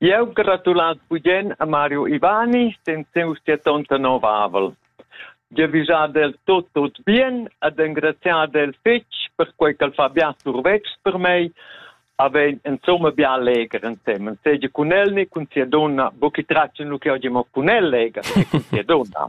Jeu gratulal bugen a Mario Ivani sen siu siatonta novavel. Jeu visad el tot tot bien ed engraziad el fetg per quei ch'el fa bia survetschs per mei, havein insomma bia leger ensemen, seigi cun el ni cun sia donna, buca tratschen lu che oggi mo cun el leger e cun sia donna.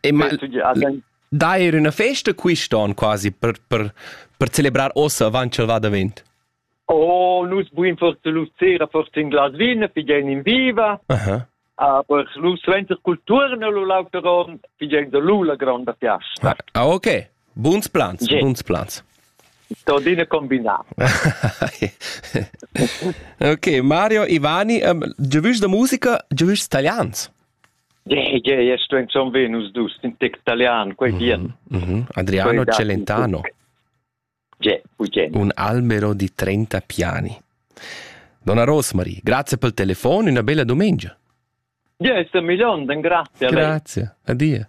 E ma dà er üna festa quist'on quasi per, per, per celebrar ossa avant ch'el va davent? Oh, nus buin forse lu sera forse in glas vin, pigen in viva. Uh-huh. Aber lu suenter culturna lu lauter on, pigen da lu la granda fiasta. Ah, ah okay. Buns plans, yeah. buns plans. Todine combinà. ok, Mario, Ivani, um, ehm, giovüs da musica, giovüs italians? Gie, sto insomma ver nus dus in tec italian, quei bien. Mm -hmm. Adriano Celentano. Un albero di 30 piani. Donna Rosmarie, grazie per il telefono, una bella domenica. Ja, ist a Milon, dann grazie. Grazie, adia.